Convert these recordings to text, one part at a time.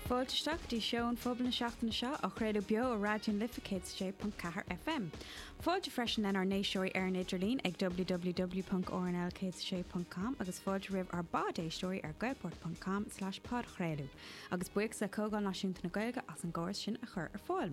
Fáilte isteach go dtí Seó an Phobail na seachtaine seo á chraoladh beo ar Raidió na Life 106.4 FM. Fáilte freisin lenár n-éisteoirí ar an idirlíon ag www.rnl106.com agus fáilte roimh ár bpodéisteoirí ar gaelport.com/podchraoladh. Agus buíochas le Comhdháil Náisiúnta na Gaeilge as an gcóras sin a chur ar fáil.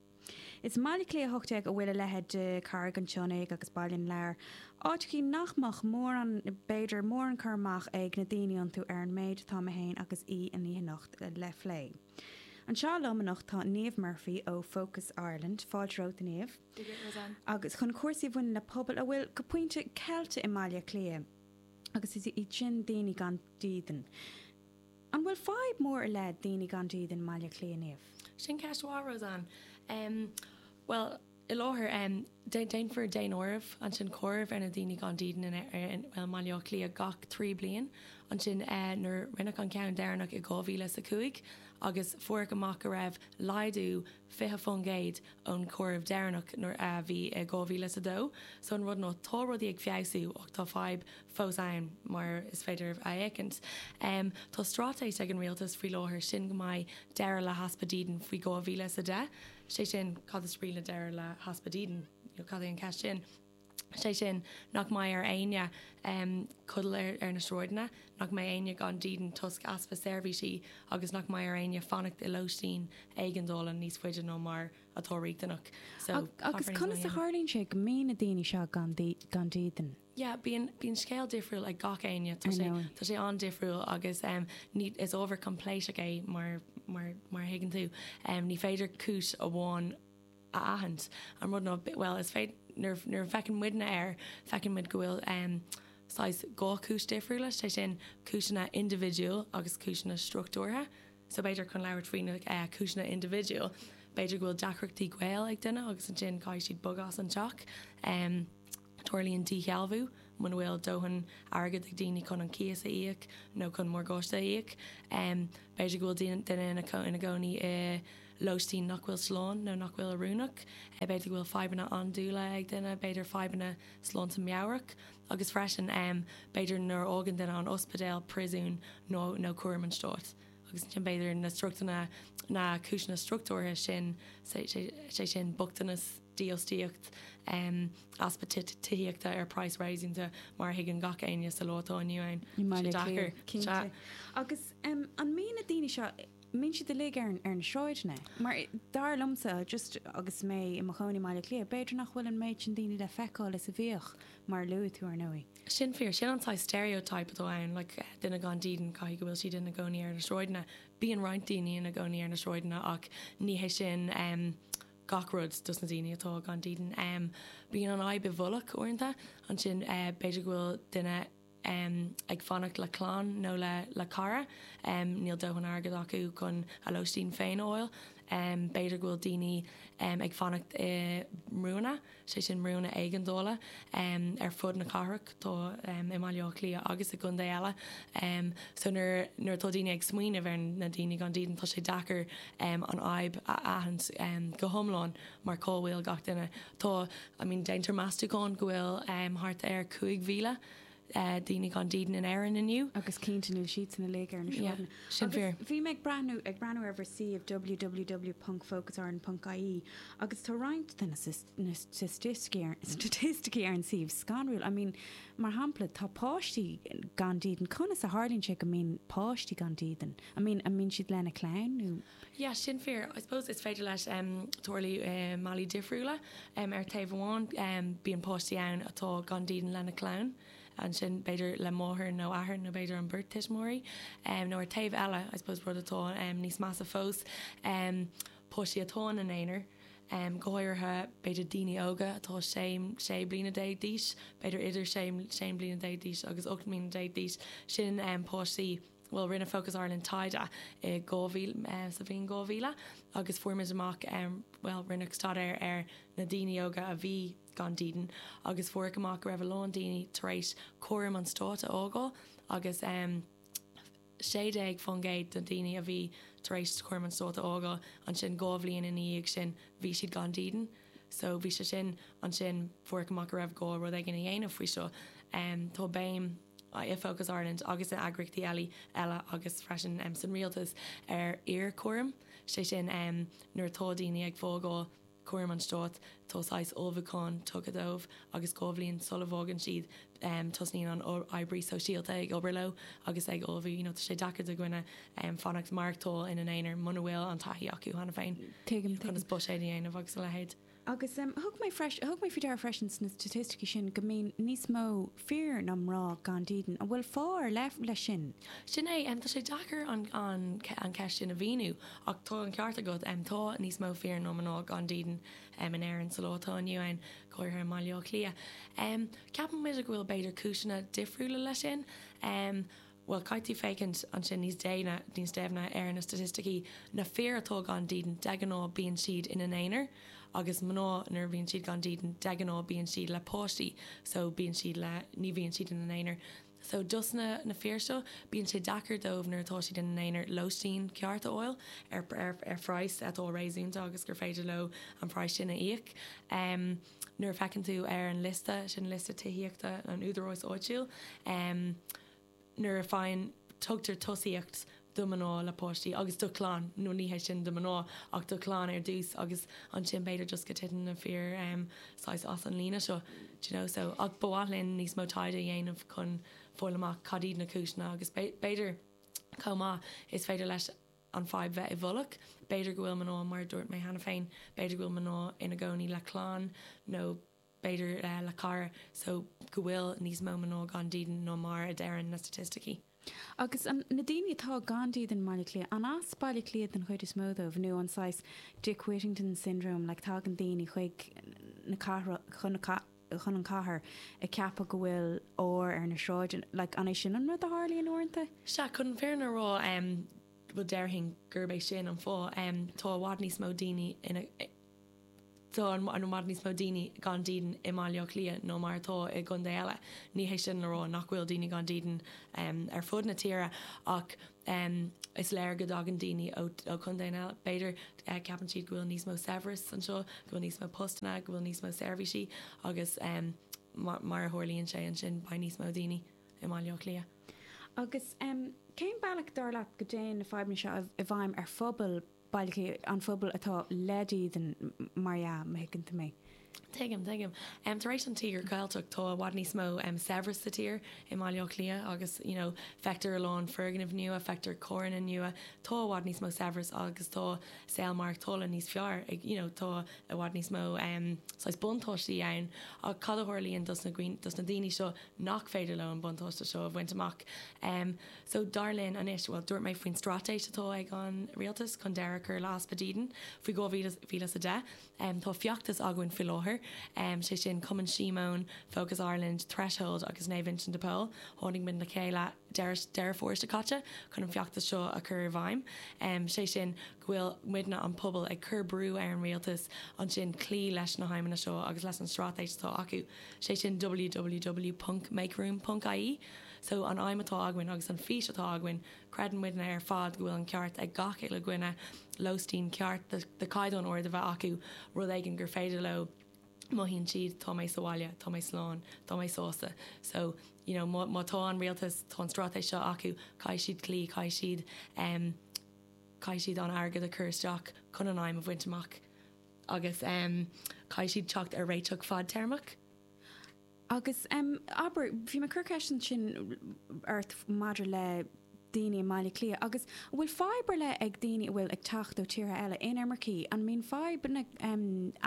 Is i mBaile Átha Cliath 18 a bhfuil a leithéid de Carraig an tSionnaigh agus Baile na Lobhar, áiteachaí nach mbeadh mórán, b'fhéidir, mórán cur amach ag na daoine iontu ar an méid atá mé féin agus aoi an oíche anocht le phlé. Anseo liom anocht tá Niamh Murphy ó Focus Ireland, fáilte romhat a Niamh, agus chun cúrsaí a bhaineann le pobail a bhfuil, go pointe, ceilte i mBaile Átha Cliath agus is iad sin daoine gan dídean. An bhfuil fadhb mór i leith daoine gan dídean i mBaile Átha Cliath, a Niamh? Sin ceist mhaith, Roseann. Bhuel, faoi láthair, déantar daonáireamh sé sin comhaireamh ar na daoine gan dídean i mBaile Átha Cliath gach trí bliain. Ansin nuair rinneadh an ceann deireanach i 2000 is a cúig agus fuaireadh amach go raibh laghdú 20% ón gcomhaireamh deireanach a bhí i 2000 is 2 so an rud ná tá rudaí ag feabhsú ach tá fadhb fós ann mar is féidir a fheiceáil. Tá straitéis ag an rialtas faoi láthair, sé sin go mbeidh deireadh le heaspa dídean faoi 2000 is 10, sé sin cad is brí le deireadh le heaspa dídean? Cad é an ceist sin? sé sin nach mbeidh ar éinne codladh ar na sráideanna, nach mbeidh éinne gan dídean toisc easpa seirbhísí agus nach mbeidh ar éinne fanacht i lóistín éigeandála níos faide ná mar atá riachtanach. So, caithfear níos mó a dhéanamh. Agus conas a tharlaíonn sé go mbíonn na daoine seo gan dídean? Yeah, bíonn scéal difriúil ag gach éinne, tá sé, tá sé an-difriúil agus ní, is ábhar coimpléascach é mar, mar, mar a thuigeann tú. Ní féidir cúis amháin. a aithint. An rud ná, bhuel, is féidir, nuair a fhéachann muidne air, feiceann muid go bhfuil saghas dhá chúis difriúla, sé sin, cúiseanna indibhidiúil agus cúiseanna struchtúrtha. So b'fhéidir chun labhairt faoi na cúiseanna indibhidiúil, b'fhéidir go bhfuil deacrachtaí gaoil ag duine agus ansin caithfidh siad bogadh as an teach. tarlaíonn díshealbhú, muna bhfuil dóthain airgid ag daoine chun an cíos a íoc nó chun morgáiste a íoc. B'fhéidir go bhfuil duine ina gcónaí i lóistín nach bhfuil slán nó nach bhfuil oiriúnach. B'fhéidir go bhfuil fadhbanna andúile ag duine, b'fhéidir fadhbanna sláinte meabhrach. Agus freisin, b'fhéidir nuair a fhágann duine an t-ospidéal, príosún nó cúram an stáit. Agus ansin b'fhéidir na cúiseanna struchtúrtha sin, sé sin, bochtanas, dífhostaíocht, easpa tithíochta ar phraghas réasúnta, mar a thuigeann gach éinne sa lá atá inniu ann. Ní maith, le Clare, cinnte. Agus an mbíonn na daoine seo, mbíonn siad uilig ar na sráideanna? Mar dar liomsa, just agus mé i mo chónaí i mBaile Átha Cliath, b'fhéidir nach bhfuil an méid sin daoine le feiceáil is a bhíodh, mar a luaigh tú, ar ndóigh. Sin fíor, sin an saghas stereotype atá ann, like, duine gan dídean, caithfidh go bhfuil siad ina gcónaí ar na sráideanna. Bíonn roinnt daoine ina gcónaí ar na sráideanna ach ní hé sin gach rud dos na daoine atá gan dídean. Bíonn an fhadhb i bhfolach uaireanta. Ansin b'fhéidir go bhfuil duine ag fanacht le clann nó le cara. Níl dóthain airgid acu chun a lóistín féin a fháil. B'fhéidir go bhfuil daoine ag fanacht i mbrúanna. sé sin brúnna éigeandála ar fud na cathrach, tá i mBaile Átha Cliath agus i gcontae eile so nuair nuair atá daoine ag smaoineamh ar na daoine gan dídean tá sé deacair an fhadhb a aithint go hiomlán mar cá bhfuil gach duine tá I mean déantar meastachán go bhfuil thart ar 5,000 daoine gan dídean in Éirinn inniu. Agus cinnte, níl siadsan uilig ar na sráideanna. Sin fíor. Agus bhí mé ag breathnú, ag breathnú ar bhur suíomh www ponc focusireland ponc ie agus tá roinnt de na staitisticí ar an suíomh scanrúil. I mean, mar shampla, tá páistí gan dídean. Conas a tharlaíonn sé go mbíonn páistí gan dídean? I mean, an mbíonn siad lena clann nó? yeah sin fíor I suppose is féidir leis em tarlú i mbealaí difriúla em ar taobh amháin em bíonn páistí ann atá gan dídean lena clann ansin b'fhéidir leis an máthair nó athair nó b'fhéidir an beirt tuismitheoirí em nó ar taobh eile I suppose rud atá em níos measa fós em páistí atá ina n-aonar em go háirithe b'fhéidir daoine óga atá sé sé bliana déag d'aois b'fhéidir idir sé sé bliana déag d'aois agus ocht mbliana déag d'aois sin em páistí bhuel rinne Focus Ireland taighde i 2000 sa bhliain 2000 agus fuair muid amach bhuel rinneadh staidéar ar na daoine óga a bhí gan dídean agus fuaireadh amach go raibh a lán daoine tar éis cúram an stáit a fhágáil agus 16% de dhaoine a bhí tar éis cúram an stáit a fhágáil ansin dhá bhliain ina dhiaidh sin bhí siad gan dídean so bhí sé sin ansin fuaireadh amach go raibh gá rud éigin a dhéanamh faoi seo tá béim i Focus Ireland agus in eagraíochtaí eile agus freisin san Rialtas ar iarchúram, sé sin nuair atá daoine ag fágáil cúram an Stáit tá saghas ullmhúcháin tugtha dóibh agus dhá bhliain sula bhfágann siad tosaíonn an oibrí sóisialta ag obair leo agus ag ullmhú you know tá sé deacair do dhuine fanacht maireachtáil ina n-aonar muna bhfuil an taithí acu cheana féin Tuigim, tuigim. conas buiséad a dhéanamh agus a leithéid. Agus thug mé freisin, thug mé faoi deara freisin sna staitisticí sin go mbíonn níos mó fir ná mná gan dídean. An bhfuil fáth ar leith leis sin? Sin é, tá sé deacair an cheist sin a mhíniú ach tá an ceart agat, tá níos mó fir ná mná gan dídean in Éirinn sa lá atá inniu ann, go háirithe i mBaile Átha Cliath. Ceapaimid go bhfuil b'fhéidir cúiseanna difriúla leis sin. beidh caithfidh féachaint ansin níos déine, níos deimhne ar na staitisticí. Na fir atá gan dídean, de ghnáth bíonn siad ina n-aonar agus mná nuair a bhíonn siad gan dídean, de ghnáth bíonn siad le páistí so bíonn siad le, ní bhíonn siad ina n-aonar. So dos na fir seo bíonn sé deacair dóibh nuair atá siad ina n-aonar lóistín ceart a fháil ar, ar, ar phraghas atá réasúnta agus gur féidir leo an praghas sin a íoc. Nuair a feiceann tú ar an liosta, liosta tithíochta an údaráis áitiúil. nuair a faigheann, tugtar tosaíocht do mná le páistí agus do chlann, nó ní hé sin, do mná ach do chlann ar dtús agus ansin b'fhéidir just go titeann na fir saghas as an líne seo d'you know so ach ba mhaith linn níos mó taighde a dhéanamh chun fáil amach cad iad na cúiseanna agus b'fhéidir chomh maith is féidir leis an fadhb bheith i bhfolach, b'fhéidir go bhfuil mná mar a dúirt mé cheana féin, b'fhéidir go bhfuil mná ina gcónaí le clann nó b'fhéidir le cara so go bhfuil níos mó mná gan dídean ná mar a deireann na staitisticí. Agus an, na daoine atá gan dídean i mBaile Cliath, an as Baile Cliath den chuid is mó dóibh nó an saghas Dick Whittington syndrome like tagann daoine chuig na cathrach, chun na, chun an cathair ag ceapadh go bhfuil ór ar na sráideanna like an é sin an rud a tharlaíonn uaireanta? Sea, chun an fírinne a rá em bhuel déarfainn gurb é sin an fáth em tá i bhfad níos mó daoine ina, tá an méid níos mó daoine gan dídean i mBaile Átha Cliath ná mar atá i gcontae eile. Ní hé sin le rá nach bhfuil daoine gan dídean ar fud na tíre ach is léir go dtagann daoine ó chontae eile, b'fhéidir, ceapann siad go bhfuil níos mó saibhreas anseo, go bhfuil níos mó postanna, go bhfuil níos mó seirbhísí agus mar a tharlaíonn sé ansin beidh níos mó daoine i mBaile Átha Cliath. Agus cén bealach, dar leat, go dtéann na fadhbanna seo i bhfeidhm ar phobail? bailtí an phobail atá le dídean, mar dhea, má thuigeann tú mé. Tuigim, tuigim. Tar éis an Tíogair Cheilteach tá i bhfad níos mó saibhreas sa tír, i mBaile Átha Cliath agus you know feictear a lán foirgnimh nua, feictear carranna nua, tá i bhfad níos mó saibhreas agus tá saol maireachtála níos fearr ag you know tá i bhfad níos mó saghas buntáistí ann ach cad a tharlaíonn dos na dos na daoine seo nach féidir leo an buntáiste seo a bhaint amach? So dar linn anois, bhuel dúirt mé faoin straitéis atá ag an Rialtas chun deireadh a chur le easpa dídin faoi 2010, tá feachtas againn faoi láthair, sé sin Cumann Síomóin, Focus Ireland, Threshold agus Naomh Uinseann de Pól, tháinig muid le chéile deireadh Dheireadh Fómhair seo caite chun an feachtas seo a chur i bhfeidhm, sé sin go bhfuil muidne an pobal ag cur brú ar an Rialtas ansin cloí leis na haidhmeanna seo agus leis an straitéis atá acu, sé sin ww.makeroom.ie. So, an aidhm atá againn agus an fís atá againn, creideann muidne ar fad go bhfuil an ceart ag gach uile dhuine, lóistín ceart de chaighdeán ard a bheith acu, rud éigin gur féidir leo, mothaíonn siad, tá mé sa bhaile, tá mé slán, tá mé sásta. So, you know, má, má tá an Rialtas, tá an straitéis seo acu, caithfidh siad cloí, caithfidh siad ehm, caithfidh siad an airgead a chur isteach chun an aidhm a bhaint amach agus ehm, caithfidh siad teacht ar réiteach fadtéarmach. Agus, abair, bhí mé ag cur ceist ansin ort maidir le daoine i mBaile Átha Cliath agus an bhfuil fadhb ar leith ag daoine a bhfuil ag teacht ó tíortha eile, inimircigh, an mbíonn fadhbanna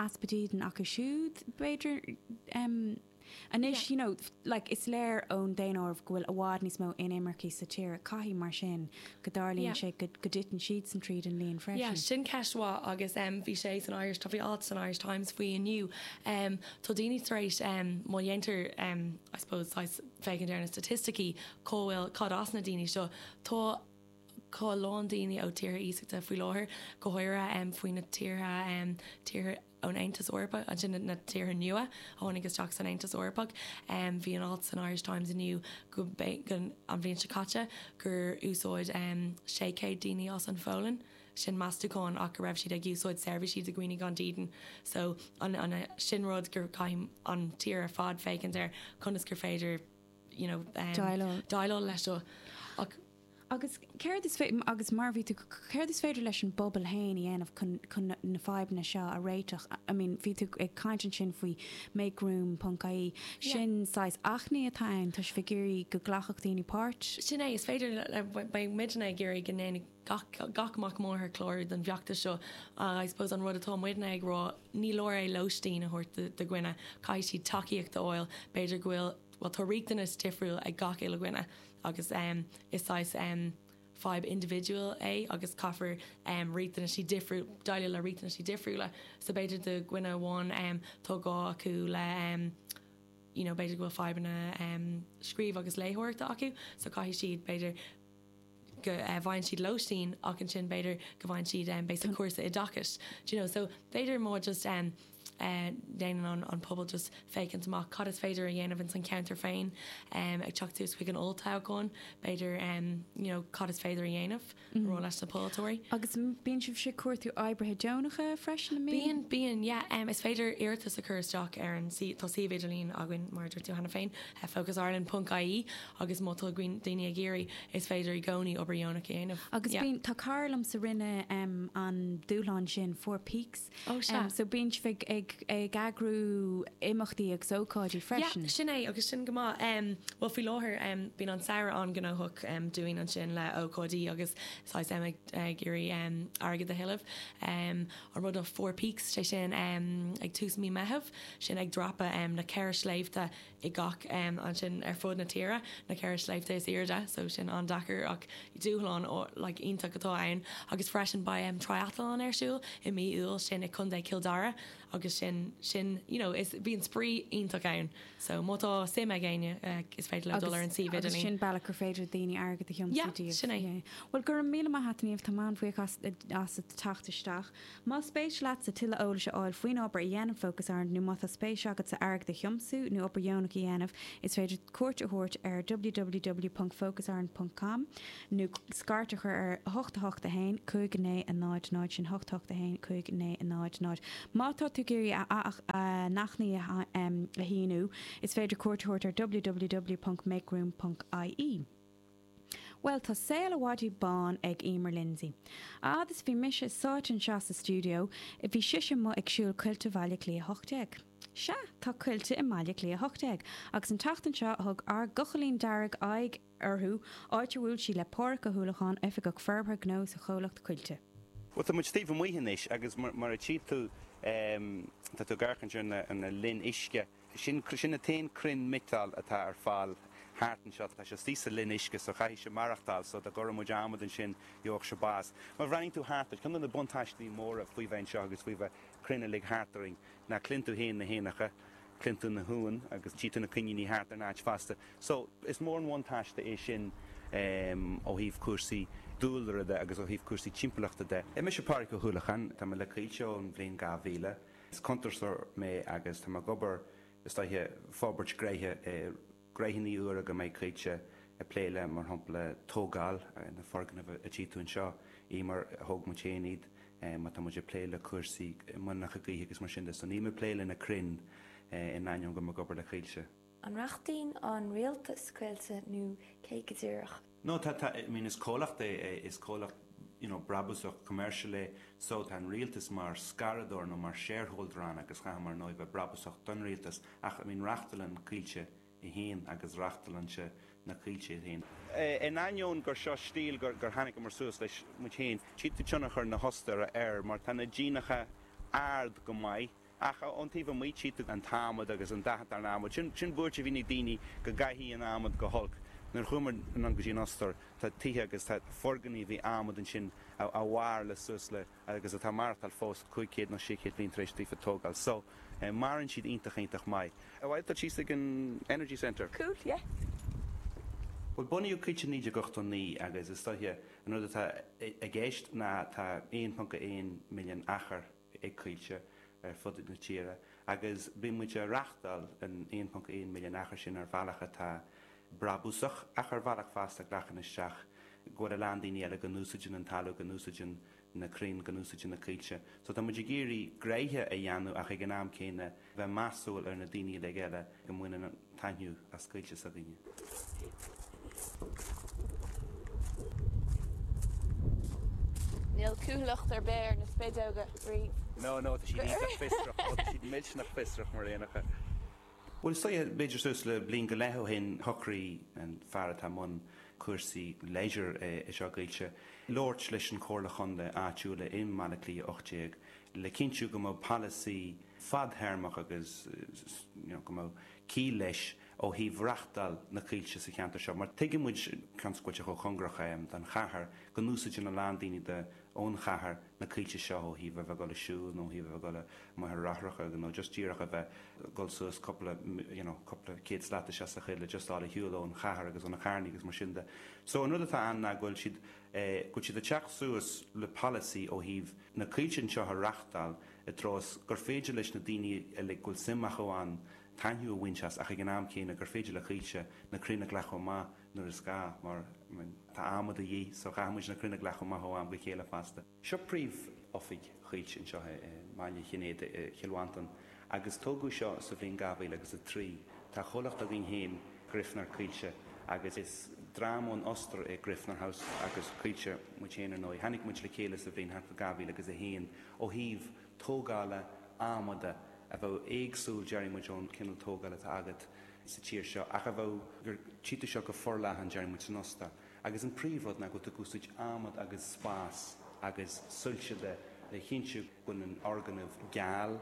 easpa dídean acu siúd, b'fhéidir, anois, you know, like, is léir ón daonáireamh go bhfuil i bhfad níos mó inimircigh sa tír, caithfidh mar sin go dtarlaíonn sé go dtiteann siadsan tríd an líon freisin. Yeah, sin ceist mhaith agus bhí sé san Irish, tá bhí alt san Irish Times faoi inniu, Tá daoine tar éis, má dhéantar, I suppose, saghas féachaint ar na staitisticí, cá bhfuil, cad as na daoine seo. Tá a lán daoine ó tíortha iasachta faoi láthair, go háirithe faoi na tíortha, tíortha ón Aontas Eorpach, ansin na tíortha nua a tháinig isteach san Aontas Eorpach. Bhí an alt san Irish Times inniu go, an bhliain seo caite, gur úsáid sé chéad daoine as an Pholainn. sin meastachán ach go raibh siad ag úsáid seirbhísí do dhaoine gan dídean so an an sin rud gur caithfidh an tír ar fad féachaint ar conas gur féidir you know déileáil déileáil leis seo ach Agus céard is féidir, agus mar a bhí tú, céard is féidir leis an bpobal fhéin a dhéanamh chun chun na na fadhbanna seo a réiteach? I mean bhí tú ag caint ansin faoi makeroom.ie, sin saghas achainí atá ann, tá sibh ag iarraidh go nglacfadh daoine páirt? Sin é, is féidir le beidh muidne ag iarraidh go ndéanfaidh. gach gach mac máthar clárú don bhfeachtas seo ach I suppose an rud atá muidne ag rá ní leor é lóistín a thabhairt do do dhuine caithfidh siad tacaíocht a fháil b'fhéidir go bhfuil bhuel tá riachtanas difriúil ag gach uile dhuine agus em is saghas em fadhb individual é agus caithfear em riachtanaisí difriúil déileáil le riachtanaisí difriúla so b'fhéidir do dhuine amháin em tá gá acu le em you know b'fhéidir go bhfuil fadhbanna em scríobh agus léitheoireachta acu so caithfidh siad b'fhéidir go bhfaigheann siad lóistín ach ansin b'fhéidir go bhfaigheann siad béasa cúrsa oideachais do you know so b'fhéidir má just dhéanann an pobal just féachaint amach cad is féidir a dhéanamh ins an cheantar féin ag teacht suas chuig an olltoghchán b'fhéidir you know cad is féidir a dhéanamh a rá leis na polaiteoirí. Agus bíonn sibh ag cuartú oibrithe deonacha freisin an mbíonn? Bíonn bíonn yeah is féidir iarratas a chur isteach ar an suíomh tá suíomh idirlín againn mar a dúirt tú cheana féin FocusIreland.ie, agus má tá daoine ag iarraidh, is féidir i gcónaí obair dheonach a dhéanamh. Agus Yeah. bíonn, tá cara liomsa rinne em an dúshlán sin Four Peaks Oh, sea. em so bíonn sibh ag, ag, ag eagrú imeachtaí agus ócáidí Yeah, freisin? sin é agus sin go maith. Em, bhuel faoi láthair, em bíonn an samhradh an-ghnóthach em dúinn ansin le ócáidí agus saghas em ag, ag iarraidh em airgead a thuilleamh. Em an rud ná Four Peaks, sé sin em ag tús mí Meitheamh, sin ag dreapadh em na ceithre sléibhte, i gach ansin ar fud na tíre, na ceithre sléibhte is airde so sin an-deacair ach dúshlán like iontach atá ann agus freisin beidh em triathlon ar siúl i mí Iúil sin i Co Chill Dara agus sin sin you know is bíonn spraoi iontach ann so má tá suim ag éinne eh, is féidir leo dul ar an suíomh agus idirlín. sin bealach gur féidir daoine airgead a thiomsú Yeah, daoibh. sin é. Yeah. Bhuel go raibh míle maith a't a Niamh, tá mé an-bhuíoch as as a teacht isteach Más spéis leatsa tuilleadh eolais a fháil faoin obair a dhéanann Focus Ireland nó má tá spéis agatsa airgead a thiomsú nó obair dheonach a dhéanamh is féidir cuairt a thabhairt ar www.focusireland.com nó scairt a chur ar 8815 900 sin 8815 900. Má tá tú ag iarraidh a n-achainí a shíniú is féidir cuairt a thabhairt ar www.makeroom.ie. Bhuel, tá saol an mhadaidh bán ag Emer Lindsay. A fhad is bhí mise sáite anseo sa stiúideo, bhí sise amuigh ag siúl coillte Bhaile Átha Cliath 18. Sea, tá coillte i mBaile Átha Cliath 18, agus an tseachtain seo thug ár gCochaillín Dearg aghaidh orthu, áit a bhuail sí le Páraic Ó hUallacháin, Oifigeach Forbartha Gnó sa chomhlacht Coillte. Bhuel, tá muid taobh amuigh anois, agus mar a tchí tú, tá tú ag amharc ansin ar na linn uisce. sin, sin an t-aon crann miotail atá ar fáil thart anseo, tá sé istigh sa linn uisce so caithfidh sé maireachtáil so dá gcuireadh muid adhmad ansin gheobhadh sé bás. Má bhreathnaíonn tú thart ort, ceann de na buntáistí móra faoi bheith anseo agus faoi bheith crainn uilig thart orainn ná cluin tú fhéin na héanacha, cluin tú na huain agus tchí tú na coiníní thart ar an áit fosta so is mór an buntáiste é sin ó thaobh cúrsaí dúlra de agus ó thaobh cúrsaí timpeallachta de. Mise Pádraig Ó hUallacháin, tá mé le Coillte ón bhliain 2000. Is cuntasóir mé agus tá mé ag obair istigh i forbairt gnoithe gnoitheannaí úra go mbeidh Coillte ag plé leo mar shampla tógáil na foirgneamh a tchí tú anseo í mar thóg muid féin iad má tá muid ag plé le cúrsaí muileannacha gaoithe agus mar sin de so níl mé ag plé le na crainn in ainneoin go bhfuil mé ag obair le Coillte. An reachtaíonn an rialtas Coillte nó cé go díreach? No, tá, tá, I mean is comhlacht é, é, is comhlacht, you know, brabúsach, commercial é, so tá an rialtas mar scaradóir nó mar shareholder ann agus caithfidh muid ar ndóigh bheith brabúsach don rialtas ach, I mean reachtálann Coillte í féin agus reachtálann sí na coillte í féin. In ainneoin gur seo stíl gur, gur tháinigeamar suas leis muid féin, tchífeá tionchar na hOstaire air mar tá na díonacha ard go maith, Ach ón taobh amuigh, tchí tú an t-adhmad agus an dath atá ar an adhmad. Sin, sin buairt a bhíonn ag daoine, go gcaithfidh an t-adhmad go holc. Nuair a chuamar anonn go dtí an Ostair, tá tithe agus tá foirgnimh adhmad ansin a mhair le suas le, agus atá ag maireachtáil fós, 500 nó 600 bliain tar éis daofa tógáil. So, maireann siad iontach, iontach maith. Ar mhaith leat dul síos ag an Energy Centre? Cool, yeah. Bhuel, bunaíodh Coillte i 1989 agus is dóiche an rud atá i gceist ná tá 1.1 milliún achar, ag Coillte ar fud na tíre agus bíonn muid a' reachtáil an 1.1 milliún achar sin ar bhealach atá brabúsach ach ar bhealach fosta a ghlacann isteach go bhfuil a lán daoine eile go n-úsáideann an talamh, go n-úsáideann na crainn, go n-úsáideann na coillte. So tá muid ag iarraidh gnoithe a dhéanamh ach ag an am céanna, bheith measúil ar na daoine uilig eile go mbaineann taitneamh as coillte s'againne. Níl cúthaileacht ar bith ar na spideoga, Bríd. No, no, tá siad iontach fiosrach. Ó, tá siad millteanach fiosrach, mar aon le cur. Bhuel, sea, b'fhéidir suas le bliain go leith ó shin, shocraigh an fear atá i mbun cúrsaí leisure anseo i gCoillte, labhairt leis an Chomhairle Chontae áitiúil i mBaile Átha Cliath 18, le cinntiú go mbeadh polasaí fadtéarmach agus go mbeadh ciall leis ó thaobh reachtáil na coillte sa cheantar seo, mar tuigeann muid agus coillte chomh cóngarach don chathair go n-úsáideann a lán daoine de ón chathair na coillte seo ó thaobh a bheith ag dul ag siúl nó ó thaobh a bheith ag dul i mbaithir fhráithreacha nó just díreach a bheith ag dul suas cúpla you know cúpla céad slat isteach sa choill le just dul ar shiúl ón chathair agus ó na carrannaí agus mar sin de. So an rud atá ann ná go bhfuil siad eh go bhfuil siad ag teacht suas le polasaí ó thaobh na coillte anseo a reáchtáil i dtreo is gur féidir leis na daoine uilig go bhfuil suim acu ann taitneamh a bhaint as ach ag an am céanna gur féidir le Coillte na crainn a leagan chomh maith nuair is gá mar tá adhmad de dhíth so chaithfidh muid na crainn a leagan chomh maith ó am go chéile fosta. Seo príomhoifig Choillte anseo i mBaile an Chinnéidigh i gCill Mhantáin Agus tógadh seo sa bhliain 2003. Tá comhlacht againn féin, Griffner Coillte, agus is dream ón Ostair é Griffner Haus agus Coillte muid féin ar ndóigh. Tháinig muid le chéile sa bhliain thart fá 2001. Ó thaobh tógála adhmaid a bheadh éagsúil déarfaidh muid ón cineál tógála atá agat sa tír seo ach a bheadh gur tchítear seo go forleathan déarfaidh muid san Ostair agus an príomhrud ná go bhfuil tú ag úsáid adhmad agus spás agus soilse de le chinntiú Bíonn an foirgneamh geal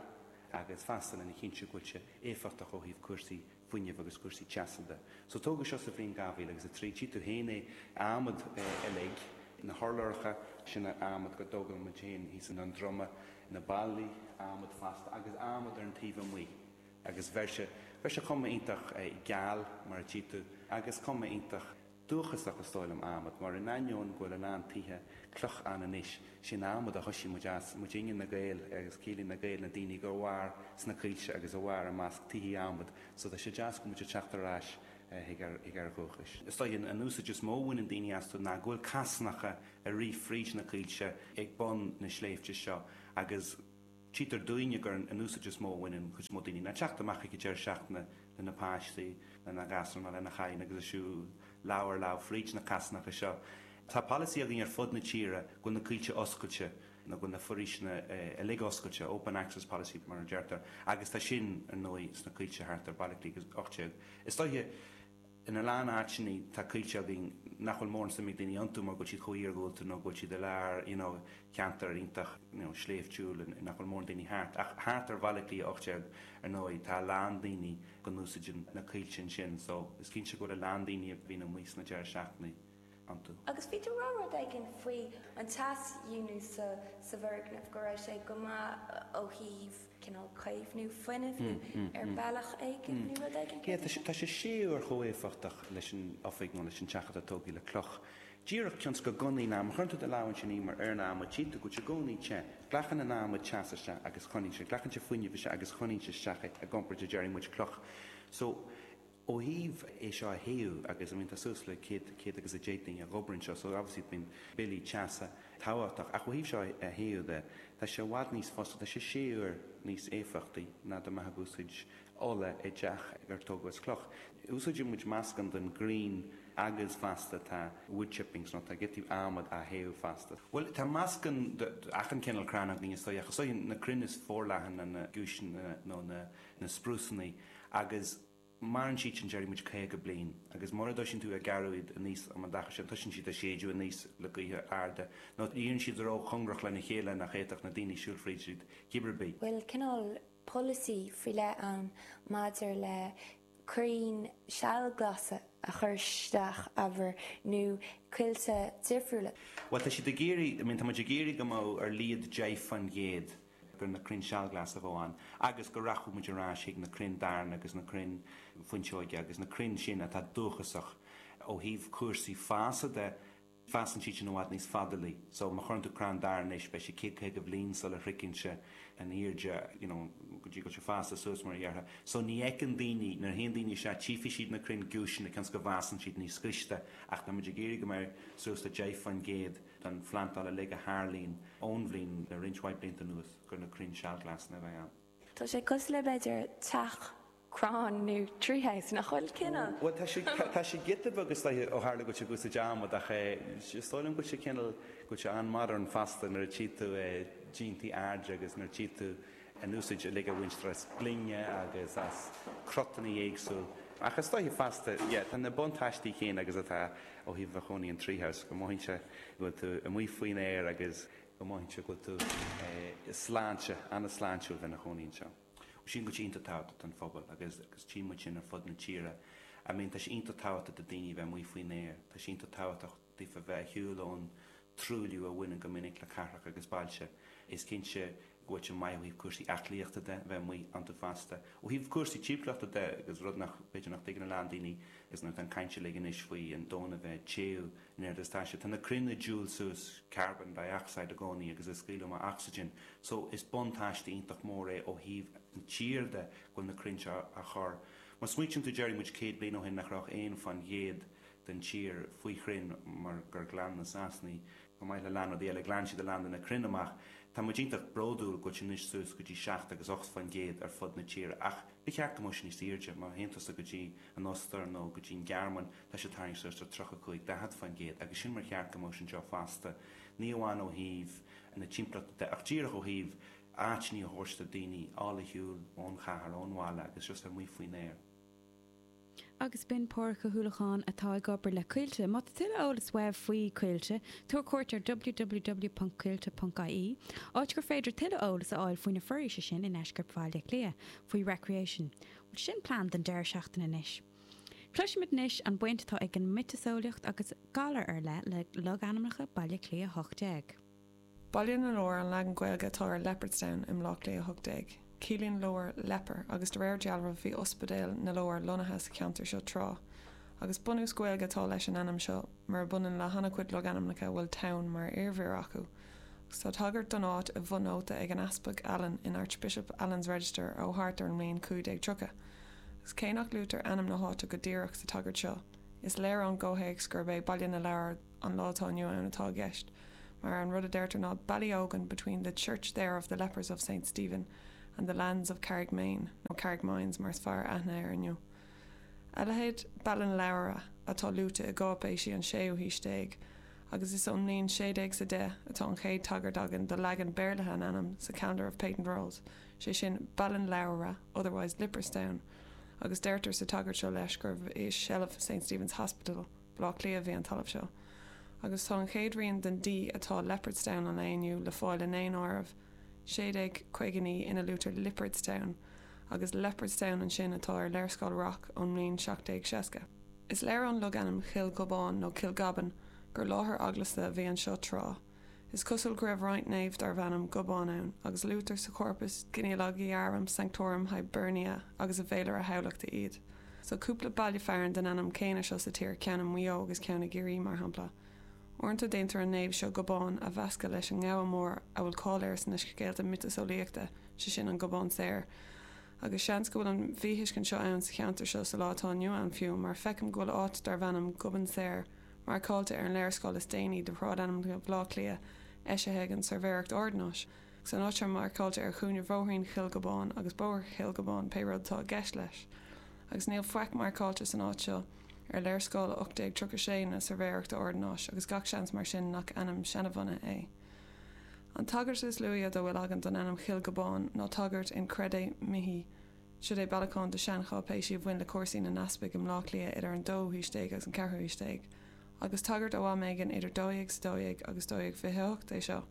agus fosta lena chinntiú go bhfuil sé éifeachtach ó thaobh cúrsaí fuinnimh agus cúrsaí teasa de. So tógadh seo sa bhliain 2003, tchí tú féin é, adhmad uilig, na hurláracha sin adhmad go dtógann muid féin thíos i nDún Droma, na ballaí, adhmad fosta agus adhmad ar an taobh amuigh agus bheir sé, bheir sé cuma iontach geal mar a tchí tú agus cuma iontach. Dúchasach is dóigh liom adhmad, mar in ainneoin go bhfuil a lán tithe cloch ann anois, is in adhmad a thoisigh muid as, muidinne na Gaeil agus ciallaíonn na Gaeil na daoine a mhair sna coillte agus a mhair i measc tithí adhmaid so tá sé deas go bhfuil muid ag teacht ar ais chuig ár ndúchais. Is dóigh an úsáid is mó a bhaineann daoine astu ná go bhfuil casánacha ag rith fríd na coillte ag bun na sléibhte seo agus, Tchítear dúinne gur sin an úsáid is mó a bhaineann an chuid is mó daoine. Ná teacht amach ag an deireadh seachtaine lena páistí, lena gasúir nó lena clann agus ag siúl ar aghaidh leofa fríd na casánacha seo. Tá polasaí againn ar fud na tíre go bhfuil na coillte oscailte nó go bhfuil na foraoiseanna uilig oscailte, open access policy mar a deirtear, agus tá sin, ar ndóigh, sna coillte thart ar Baile Átha Cliath a hocht déag. in a lán áiteanna tá coillte againn nach bhfuil mórán suime ag daoine iontu mar go bhfuil siad chomh hiargúlta nó go bhfuil siad i lár you know ceantar iontach you know sléibhtiúil and nach bhfuil mórán daoine thart ach thart ar Bhaile Átha Cliath 18 ar ndóigh tá a lán daoine go n-úsáideann na coillte ansin so is cinnte go bhfuil a lán daoine a bhíonn amuigh sna deireadh seachtainí iontu. Agus bhí tú ag rá rud éigin faoi an teasdíonú sa bhfoirgneamh, go raibh sé go maith ó thaobh cineál caomhnú fuinnimh nó ar bealach éigin nó rud éigin céard é? Tá sé sé huaire chomh éifeachtach leis an oifig nó leis an teach atá tógtha le cloch. Díreach cionn 's go gconaí an adhmad. Cuireann tú do lámh ansin anois ar an adhmad tchí tú go bhfuil sé i gcónaí te. Glacann an t-adhmad teas isteach agus coinníonn sé, glacann sé fuinneamh isteach agus coinníonn sé isteach é i gcomparáid le déarfaidh muid cloch. So. Ó thaobh, é seo a théú agus, I mean, tá suas le céad, céad agus a deich duine ag obair anseo, so obviously bíonn billí teasa tábhachtach ach ó thaobh seo a théú de, tá sé i bhfad níos fusa, tá sé sé huaire níos éifeachtaí ná dá mbeadh ag úsáid ola i dteach ar tógadh as cloch. Úsáideann muid meascán den ghrian agus fosta tá wood chippings nó tá giotaí adhmad á théú fosta. Bhuel, tá meascán de achan cineál crann againn is dóigh ach is iad na crainn is forleithne ná na giúiseanna nó na. na sprúsannaí agus maireann siad sin, déarfaidh muid, 50 bliain agus mura dtoisíonn tú ag gearradh iad aníos fán am adaí sin, toisíonn siad ag séideadh aníos le gaotha arda nó éiríonn siad róchongrach lena chéile nach fhéadfadh na daoine siúl fríd, cib ar bith. bhfuil cineál polasaí faoi leith ann maidir le crainn duillsilteacha a chur isteach, abair nó coillte difriúla? Bhuel, tá siad ag iarraidh, I mean, tá muid ag iarraidh go mbeadh ar a laghad deich faoin gcéad gur na crainn sealghlasa a bheadh ann agus go rachadh muid ar ais chuig na crainn darna agus na crainn fuinseoige agus na crainn sin atá dúchasach ó thaobh cúrsaí fása de, fásann siad sin i bhfad níos fadalaí so má chuireann tú crann darna anois beidh sé céad caoga bliain sula shroicheann sé an airde you know go dtí go bhfuil sé fásta suas mar a dhéarfá. So ní fheiceann daoine, nuair a théann daoine isteach tchífidh siad na crainn giúiseanna cionn is go bhfásann siad níos gaiste ach tá muid ag iarraidh go mbeidh suas le deich faoin gcéad den phlandáil uilig a tharlaíonn ón bhliain le roinnt mhaith blianta anuas gur na crainn sealghlasna a bheidh ann. Tá sé cosúil le b'fhéidir teach crann nó tree house, nach bhfuil? Cineál. Bhuel, tá sé, tá sé giota beag, is dóiche, ó tharla go bhfuil sé ag úsáid adhmad ach eh is dóigh liom go bhfuil sé cineál, go bhfuil sé an-modern fosta nuair a tchí tú eh díontaí airde agus nuair a tchí tú an úsáid uilig a bhaintear as gloine agus as cruthanna éagsúil ach is dóiche fosta, yeah, tá na buntáistí céanna agus atá ó thaobh a chónaí in tree house, go mothaíonn sé go bhfuil tú amuigh faoin aer agus go mothaíonn sé go bhfuil tú sláinte, an-sláintiúil a bheith ina chónaí anseo. Bhuel sílim go bhfuil siad iontach tábhachtach don phobal agus agus tchím muid sin ar fud na tíre. I mean, tá sé iontach tábhachtach do daoine a bheith amuigh faoin aer, tá sé iontach tábhachtach, dtaobh de bheith ar shiúl ón truailliú a bhaineann go minic le cathracha agus bailte. Is cinnte go bhfuil sin maith ó thaobh cúrsaí aclaíochta de, bheith amuigh iontu fosta. Ó thaobh cúrsaí timpeallachta de, agus rud nach, b'fhéidir nach dtuigeann a lán daoine is nuair atá an chaint uilig anois faoi an domhan a bheith ag téamh in airde is taise, tá na crainn ag diúl suas carbon dioxide i gcónaí agus ag scaoileadh amach ocsaigin so is buntáiste iontach mór é ó thaobh an tír de go bhfuil na crainn seo á gcur. Má smaoitíonn tú, déarfaidh muid céad bliain ó shin nach raibh ach aon faoin gcéad den tír faoi chrainn mar gur ghlan na Sasanaigh, chomh maith le a lán rudaí eile, ghlan siad a lán de na crainn amach. Tá muid iontach bródúil go bhfuil muid anois suas go dtí seacht agus ocht faoin gcéad ar fud na tíre ach ba cheart go mbeadh sé níos airde, má théann tusa go dtí an Ostair nó go dtí an Ghearmáin tá siad tarraingthe suas do tríocha cúig, daichead faoin gcéad agus sin mar ba cheart go mbeadh sé anseo fosta, ní amháin ó thaobh na timpeallachta de ach díreach ó thaobh áiteannaí a thabhairt do daoine, fáil ar shiúl ón chathair, ón bhaile agus just amuigh faoin aer. agus b'in Pádraig Ó hUallacháin atá ag obair le Coillte. Má tá tuilleadh eolas uaibh faoi Coillte, tabhair cuairt ar www.coillte.ie, áit gur féidir tuilleadh eolas a fháil faoi na foraoise sin i ndeisceart Bhaile Átha Cliath, faoi Recreation. Bhuel, sin plean don deireadh seachtaine anois. Cloisfimid anois an bhaint atá ag an miotaseolaíocht agus galair ar leith le logainmneacha Bhaile Átha Cliath 18. Baile na Lobhar an leagan Gaeilge atá ar Leopardstown i mBaile Átha Cliath 18. Ciallaíonn lobhar 'leper' agus de réir dealraimh bhí Ospidéal na Lobhar lonnaithe sa cheantar seo tráth, agus bunús Gaeilge atá leis an ainm seo, murab ionann le han-chuid logainmneacha a bhfuil town mar iarmhír acu, agus tá tagairt don áit i bhfonóta ag an Easpag Allen in Archbishop Allen's Register ó thart ar an mbliain 1530, agus cé nach luaitear ainm na háite go díreach sa tagairt seo, is léir ón gcomhthéacs gurb é Baile na Lobhar an lá atá inniu ann atá i gceist, mar an rud a deirtear ná Ballyogan between the church there of the lepers of Saint Stephen and the lands of Carrigmaine, nó Carrickmines mar is fearr aithne air inniu. A leithéid Ballinlowra atá luaite i gcáipéisí an séú haois déag, agus is ón mbliain 1610 atá an chéad tagairt againn do leagan béarlaithe an ainm sa Calendar of Patent Rolls, sé sin Ballinlowra otherwise Liprestown, agus deirtear sa tagairt seo leis gurbh i seilbh Saint Stephen's Hospital, Bleá Cliath a bhí an talamh seo agus tá an chéad rian den D atá i Leopardstown an lae inniu le fáil i ndaonáireamh 1659 ina luaitear Liopardstown agus Leopardstown ansin atá ar léarscáil Rocque ón mbliain 1760. Is léir ón logainm Chill Ghobáin nó Kilgobbin gur láthair eaglasta a bhí anseo tráth. Is cosúil go raibh roinnt naomh darbh ainm Gobán ann, agus luaitear sa Chorpus Genealogiarum Sanctorum Hiberniae agus i bhFéilire Thamhlachta iad. Tá cúpla baile fearainn den ainm céanna seo sa tír, ceann i Maigh Eo agus ceann i gCiarraí, mar shampla. Uaireanta déantar an naomh seo Gobán a mheascadh leis an ngabha mór a bhfuil cáil air sna scéalta miotaseolaíochta, sé sin an Gobán Saor, agus seans go bhfuil an mhíthuiscint seo ann sa cheantar seo sa lá atá inniu ann fiú, mar feicim go bhfuil áit darbh ainm Gobán Saor, Marcáilte ar an léarscáil is déanaí de shráidainmneacha Bhaile Átha Cliath, eisithe ag an tSuirbhéireacht Ordanáis, agus an áit seo marcáilte ar chúinne Bhóithrín Chill Ghobáin agus Bóthar Chill Ghobáin, pé rud atá i gceist leis, agus níl faic marcáilte san áit seo ar léarscáil 1836 na Suirbhéireachta Ordanáis agus gach seans mar sin nach ainm seanbhunaithe é. An tagairt is luaithe dá bhfuil againn don ainm Chill Ghobáin ná tagairt in Crede Mihi, Siod é bailiúchán de shean-cháipéisí a bhain le cúrsaí na n-easpaig i mBleá Cliath idir an dóú haois déag agus an ceathrú haois déag, agus tagairt ó am éigin idir 1212 agus 1228 é seo.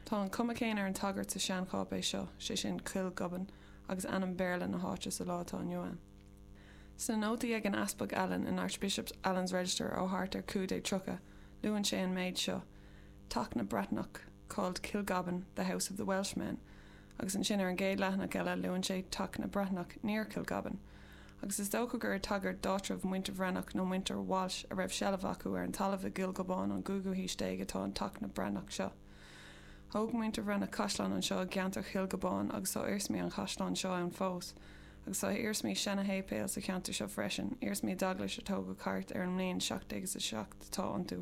Tá an cuma céanna ar an tagairt sa sean-cháipéis seo, sé sin, Kilgobbin agus ainm Béarla na háite sa lá atá inniu ann. Sna nótaí ag an Easpag Allen in Archbishop Allen's Register ó thart ar 1530, luann sé an méid seo, Teach na Breatnach called Kilgobban, the house of the Welshmen, agus ansin ar an gcéad leathanach eile luann sé teach na Breathnach near Kilgobban, agus is dócha gur ag tagairt d'áitreabh muintir Bhreathnach nó muintir Walsh a raibh seilbh acu ar an talamh i gCill Ghobáin ón gcúigiú haois déag atá an Teach na Breathnach seo. Thóg muintir Bhreathnach caisleán anseo i gceantar Chill Ghobáin agus tá iarsmaí an chaisleáin seo ann fós, agus tá iarsmaí seana-shéipéil sa cheantar seo freisin, iarsmaí d'eaglais a tógadh thart ar an mbliain 1707 atá iontu,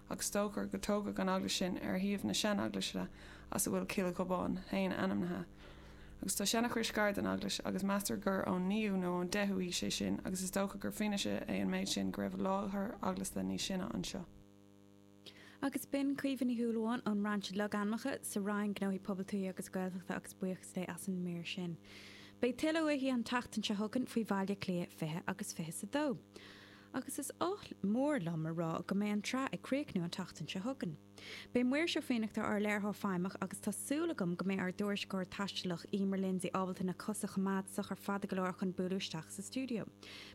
ach is dócha gur tógadh an eaglais sin ar shuíomh na seaneaglaise as a bhfuil Cill Ghobáin féin ainmnithe, agus tá seana-chrois gar don eaglais agus meastar gur ón naoú nó ón deichiú haois é sin agus is dócha gur fianaise é an méid sin go raibh láthair eaglasta níos sine anseo. Sea, agus b'in Caoimhe Ní Shúilleabháin ón mBrainse Logainmneacha sa Roinn Gnóthaí Pobail, Tuaithe agus Gaeltachta agus buíochas léi as an mír sin. Beidh tuilleadh uaithi an tseachtain seo chugainn faoi Bhaile Átha Cliath 20 agus 22. Agus is oth mór liom a rá go mbeidh an tsraith ag críochnú an tseachtain seo chugainn. Beidh Muiris Ó Fiannachta ár léiritheoir feidhmeach agus tá súil agam go mbeidh ár dtuairisceoir taistealach, Emer Lindsay ábalta na cosa a choimeád socair fada go leor chun bualadh isteach sa stiúideo.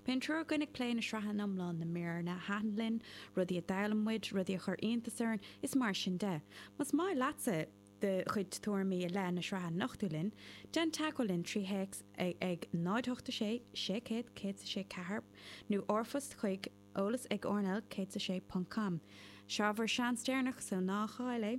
Beidh an triúr againn ag plé na sraithe ina hiomláine, na míreanna a thaitin linn, rudaí a d'fhoghlaim muid, rudaí a chuir iontas orainn, is mar sin de. Más maith leatsa. do chuid tuairimí i leith na sraithe a nochtadh linn, déan teagmháil linn trí théacs ag 08 6 600 164 nó r-phost chuig, eolas ag rnl 106 ponc com. Seo bhur seans deireanach, so ná caill é!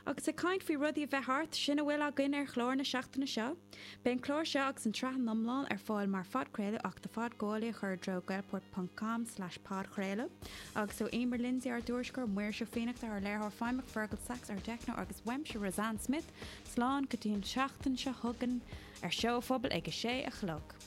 Agus ag caint faoi rudaí a bheith thart, sin a bhfuil againn ar chlár na seachtaine seo! Beidh an clár seo agus an tsraith ina hiomlán ar fáil mar phodchraoladh ach do phodghabhálaí a chur i dtreo gaelport.com slash podchraoladh agus ó Emer Lindsay ár dtuairisceoir, Muiris Ó Fiannachta ár léiritheoir feidhmeach, Fergal Sachs ár dteicneoir agus uaimse, Roseanne Smith, slán go dtí an seachtain seo chugainn ar Seó a Phobail ag a sé a chlog.